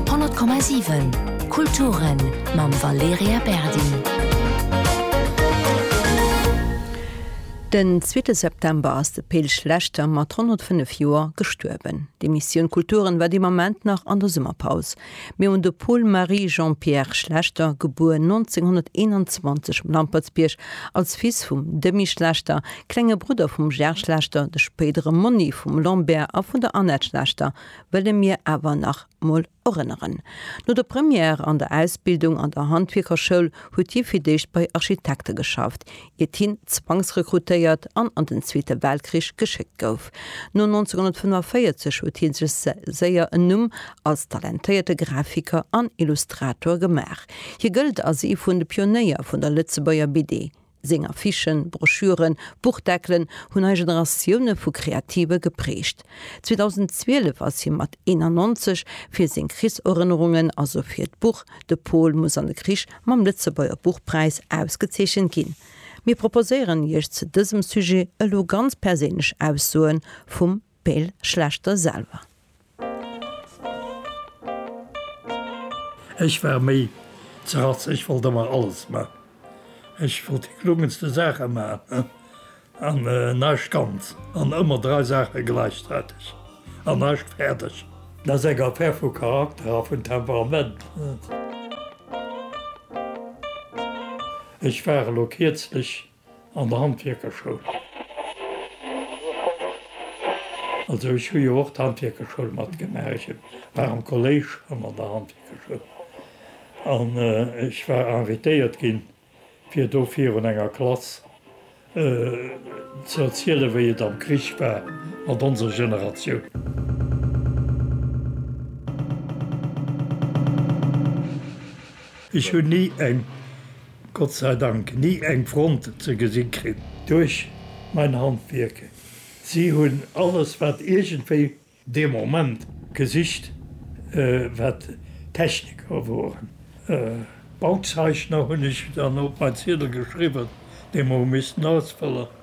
100,7 Kulturen mam Valerija Berdi. Den zweete September ass de Pil Schlechter mat 105 Joer gestuerwen. D'Emissioun Kulturen war dee Moment nach an der Summerpaus. Mir hunn de Paul Marie Jean-Pierre Schlechter, gebuer 1921 um Lampertsbierg, als Fils vum Demy Schlechter, klenge Brudder vum Gerd Schlechter, de spéidere Monni vum Lambert a vun der Annette Schlechter, wëlle mir awer nach mol erënneren. No der Première an der Ausbildung an der Handwierkerschoul huet hie fir d'éischt bei Architekte geschafft, iert hien zwangsrekrutéiert an an den Zweete Weltkrich geschéckt gouf. No 1945 huet hie sech séier en Numm als talentéierte Grafiker an Illustrator gemaach. Hie gëllt als ee vun de Pionéier vun der Lëtzebuerger BD. Seng Affichen, Broschüren, Buchdeckelen hunn nei Generatioune vu Kreative geprägt. 2012 ass hie mat 91 fir seng Krichserënnerungen, also fir d'Buch De Pol muss an de Krich mam Lëtzebuerger Buchpräis ausgezeechent ginn. Mir proposéieren Iech zu dësem Sujet elo ganz perséinlech Aussoe vum. Peel Schlechter selwer. Ech war méi ze ratz, ech wollt emmer alles man, ech wollt déi klungenste Saache man an naischt ganz an ëmmer drai Saache glaichzaitig an naischt faerdeg. Dat ass eng Affaire vu Charakter a vun Temperament. Ech war elo kierzlich An der Handwierkerschoul. Also ech hu jo och d'Handwierkerschoul matgemaach. Ech war am Kolléisch an an der Handwierkerschoul. An ech war invitéiert ginn, fir do virun enger Klass ze erzielen, wéi et am Krich war mat onser Generatioun. Ech hunn ni eng. Gott sei Dank ni eng Front ze gesi kritt. Duerch mein Handwierk. Si hunn alles, wat iergendwéi. Dee Moment gesicht, wat Techniker woren. Bauzeechner hunn ech dann op mein Ziedel geschriwwen, dee mer hu missten ausfëllen.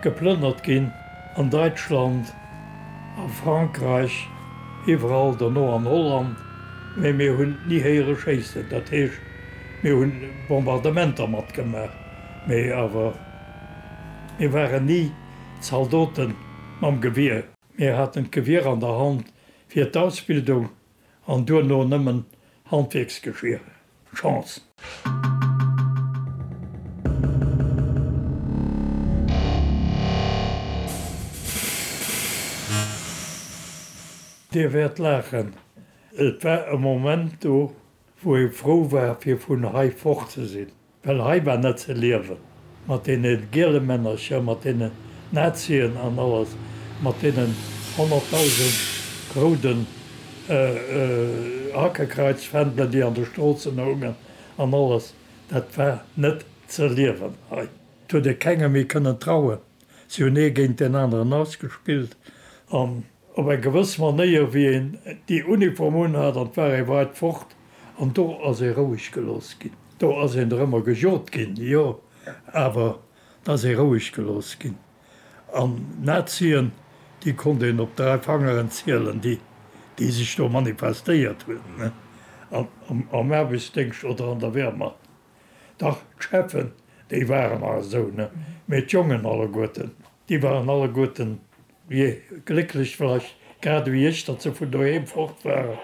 Geplënnert ginn an Däitschland, a Frankräich, iwwerall dono an Holland, mee mir hunn ni héiere schéissen. Dat heescht, mir hu Bombardementer matgemaach, mee awer mir waren ni Zaldote mam Gewier. Mir haten d'Gewier an der Hand fir d'Ausbildung an duerno nëmmen Handwierksgeschier. Chance. Dir wäert laachen, et war e Moment do, wou ee frou war, fir vun hei fort ze sinn. Well hei war net ze liewen, mat deene giele Männercher, mat deenen Nazien an alles, mat deenen honnertdausend rouden Hakekreizfändelen, déi an de Stroossen houngen an alles. Dat war net ze liewen hei. Et huet ee kengem méi kënnen trauen. Si hunn ee géint deen aneren ausgespillt an op eng gewëss Manéier, wéi een déi Uniform unhat an d'war ee weit fort an do ass ee roueg gelooss ginn. Do ass een der ëmmer gejot ginn, jo, awer et ass ee roueg gelooss ginn. An d'Nazien, déi konnt een op dräi Fangeren zielen, déi, déi sech do manifestéiert hunn, an, am Aarbechtsdéngscht oder an der Wehrmacht. Dach, d'Cheffen, déi waren nach esou, ne? Mee d'Jongen alleguerten, déi waren alleguerten, je, glécklech vläicht, grad ewéi ech, datt se vun doheem fort waren.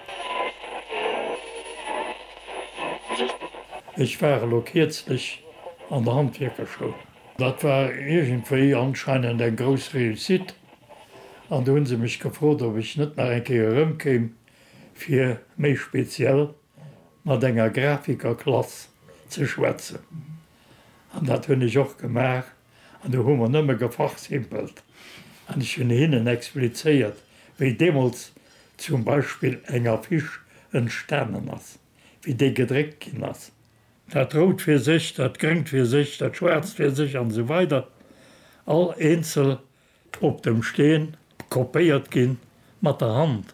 Ech war elo kierzlech an der Handwierkerschoul. Dat war iergendwéi anscheinend eng grouss Réussite. An do hu se mech gefrot, ob ech net nach eng Kéier erëmkéim, fir méi speziell, mat enger Grafikerklass ze schwätzen. An dat hunn ech och gemaach an do hu mer nëmme gefachsimpelt an ech hunn hinnen explizéiert, wéi deemools zum Beispill eng Affiche entstanen ass, wéi déi gedréckt ginn ass. Dat Rout fir sech, dat Gréngt fir sech, dat Schwaarzt fir sech an esou weider, all eenzel Op dem Steen kopéiert ginn, mat der Hand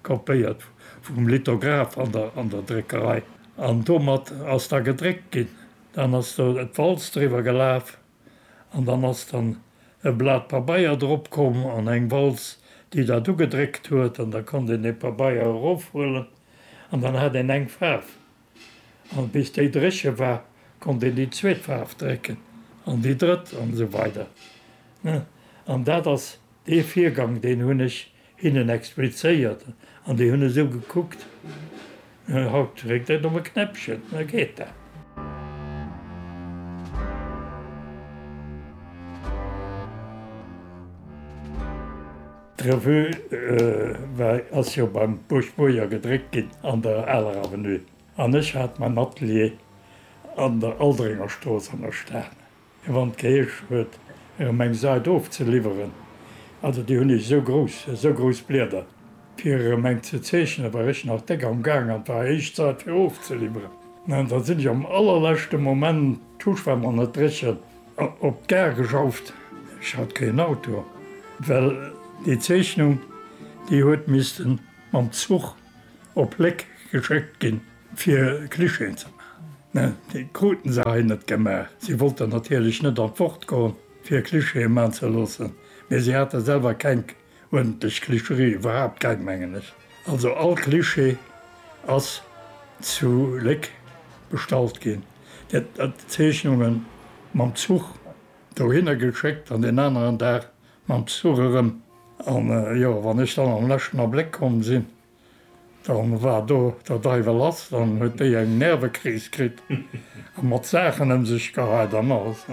kopéiert vum Lithograph an der Dréckerei, an domat ass da gedréckt ginn. Dann ass do d'Walz driwwer gelaf an dann ass dann e Blat Pabeier drop komm an eng Walz, déi dat ugedréckt huet, an da konnt een dee Pabeier erofhuelen an dann hat een eng Faarf. An bis déi dréche war, konnt een déi zweet Faarf drécken an déi drëtt an esou weider. An dat ass dee Virgang, deen hunn ech hinnen explizéiert an déi hunn esou gekuckt. Haut dréckt een op e Knäppchen, da geet dat. D'Revue war, ass jo beim Busch Boyer gedréckt ginn an der aler Avenue an ech hat mäin Atelier an der Aldringerstrooss an der Stad. A wann et geheescht huet, erëm eng Sait ofzeliwweren, also déi hunn ech esou grouss, esou grouss Blieder, fir erëm eng ze zeechnen, war ech nach déck am Gaang an et war héich Zait, fir ofzeliwweren. An da sinn ech am allerleschte Moment, d'Tusch war mer net dréchen, Op d'Gare geschafft, ech hat keen Auto, well déi Zeechnung déi huet missten mam Zuch op Léck geschéckt ginn fir Clichén ze maachen. Déi kruten se hei net gemaach. Si wollten natierlech net an d'Wort goen fir Clichée maan ze loossen, mee si hate selwer keng. Huet dech Klischerie iwwerhaapt geng mengen ech. Also all Klischee ass zu Léck bestallt ginn. Dir hat Zeechnungen mam Zuch dohinner geschéckt an deen aneren Dag mam Zuch erëm. An jo, wann ech dann am leschten Abléck komm sinn, da war do der Deiwel lass. Dann huet déi eng Nervekris kritt a mat Saachen ëm sech geheit an alles.